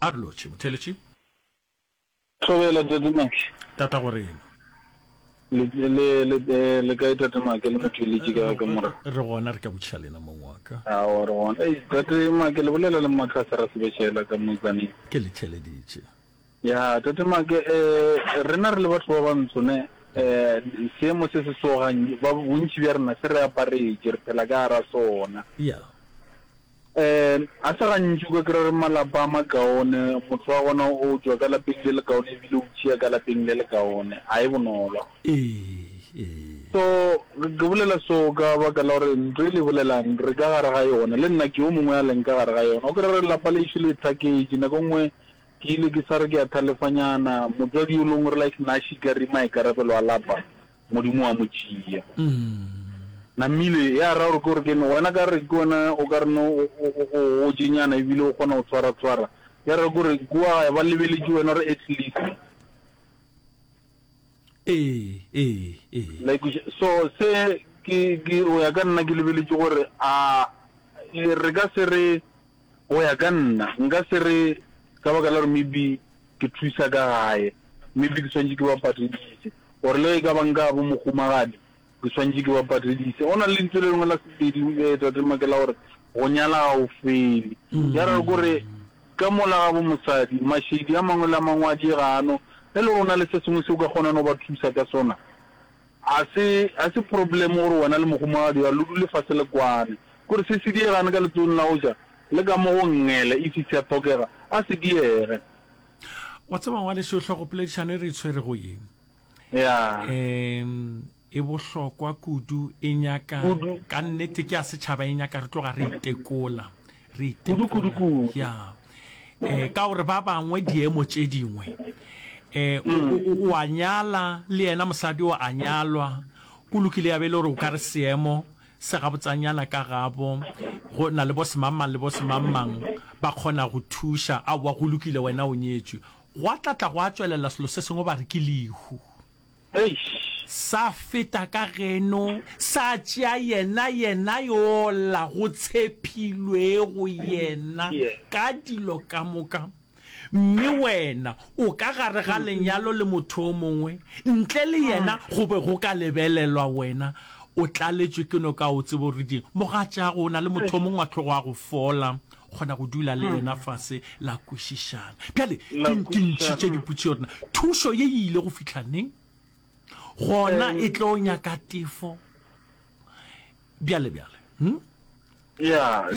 A re lotšhe, Motheeletši. Thobela, Tate Make. Tatagorena. Le, le, le, le kae, Tate Make, le Motheeletši ka, ka morena? Re gona, re ka botšiša lena, mong wa ka. Aowa, re gona. Ei, Tate Make, le bolela le mma Tlase ra sebešela ka moetsaneng. Ke le theeleditše. Ya, Tate Make, eh, rena re le batho ba bantsho, ne, eh, seemo se se so, gannye, ba, bontši bja rena se re aparetše, re phela ka gara sona. Ya. Ga se gantši o ka kry-a gore malapa a makaone motho wa gona o tšwa ka lapeng le lekaone ebile o tšhia ka lapeng le lekaone, ga e bonolo. So ke bolela so ka baka la gore ntho e le e bolelang re ka gare ga yona, le nna ke yo mongwe a leng ka gare ga yona. O kry-e gore lapa lešo le thaketše, nako e nngwe ke ile ke sa re ke a thalefanyana, motswadi yo lengwe o re like nna a šika re maikarabelo a lapa. Modimo wa mo tšea. Namile, ya ra gore ke gore kene wena ka re ke wena o ka reno o gotšenyana ebile o kgona go tshwara-tshwara. Ya ra gore kua gae ba lebeletše wena gore at least. Ee, ee, ee. La ikweša? So se ke, ke, o ya ka nna ke lebeletše gore a re ka se re. Go ya ka nna, nka se re ka baka la gore maybe ke thusa ka gae, maybe ke swanetše ke ba patedise, or le ge e ka ba nka bo mohumagadi, ke swanetše ke ba patedise. Go na le lentsu le lengwe la Sepedi, eh, Tate Make, la gore go nyala ga go fele. Ya ra gore ka mola ga bo mosadi, mašedi a mangwe le a mangwe a diega ano, ge e le gore o na le se sengwe se o ka kgonang go ba thusa ka sona, A se, a se problem gore wena le mogomagadi wa lo dule fase le kwane. Kore se se diegane ka letsogong la go ja, le ka mo go ngele, if sea thokega, a se diege. Wa tseba ngwaneso, hlogopoledišano e re e tshwerego ye, Yeah. um e bohlokwa kudu, e nyaka, Kudu. ka nnete ke ya setšhaba, e nyaka re tloga re itekola. re itemokudukudu ya eh ka gore ba bangwe diemo tše dingwe eh o a nyala le yena mosadi o a nyalwa go lokile ya be le gore o ka re seemo se ga botsanyana ka gabo go na le bo semamang le bo semamang ba kgona go thuša a wa go lokile wena o nyetswe go a tlatla go a tswelela selo se sengwe ba re ke lehu Eish! Sa feta ka geno, sa tšea yena, yena yola go tshepilwego yena, ka dilo ka moka. Mme wena o ka gare ga lenyalo le motho o mongwe, ntle le yena go be go ka lebelelwa wena o tlaletšwe ke noka. O tseba o re di, mogatšaago, o na le motho o mongwe wa tlogo a go fola, kgona go dula le yena fase la kwešišana bjale ke ntšhitše diputse yona thušo ye e ile go fitlha neng gona e tlo nyaka tefo bjale bjale hmm? ya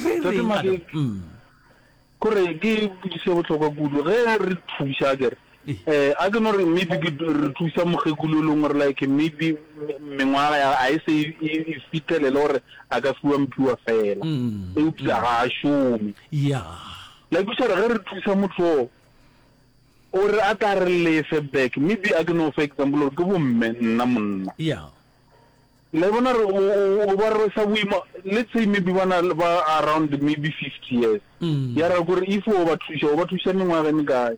kore ke putise bohlokwa kudu ge re thuša kere Eh, a ke no re maybe ke re thusa mogekulu e leng gore like maybe mengwaga ya a e se e, e, e fitlhelele gore a ka fiwa mphiwa fela mm, eupša mm. ga a šome yeah. like o tšhara ge re thusa motho o o re a tla re lefe back maybe a ke no for example gore ke bomme nna monna yeah. le bona re o ba re sa boima let's say maybe bana ba around maybe fifty years mm. ya ra gore if o ba thuša o ba thuša mengwaga e mekae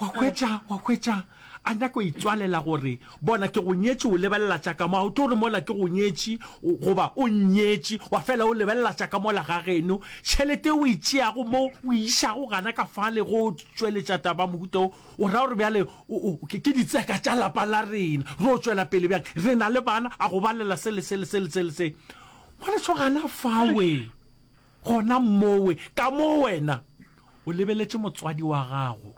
Wa hwetša, wa hwetša, a nyaka go itswalela gore, Bona, ke go nyetše, o lebelela tša ka mo. A o tlo re mola ke go nyetše, o, goba o nnyetše, wa fela o lebelela tša ka mola ga geno. Tšhelete e o e tšeago mo, o e išago gana ka fale go tšweletša taba ya mohuta wo, o ra gore bjale o, o, ke, ke ditseka tša lapa la rena, re yo tšwela pele bjang? Re na le bana, a go balela se le se le se le se le se. Ngwaneso, gana fawe. Gona mmowe, ka mo wena o lebeletše motswadi wa gago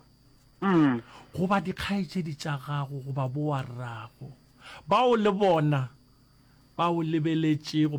goba dikgaetšedi tša gago goba bowarrago bao le bona ba o lebeletšego,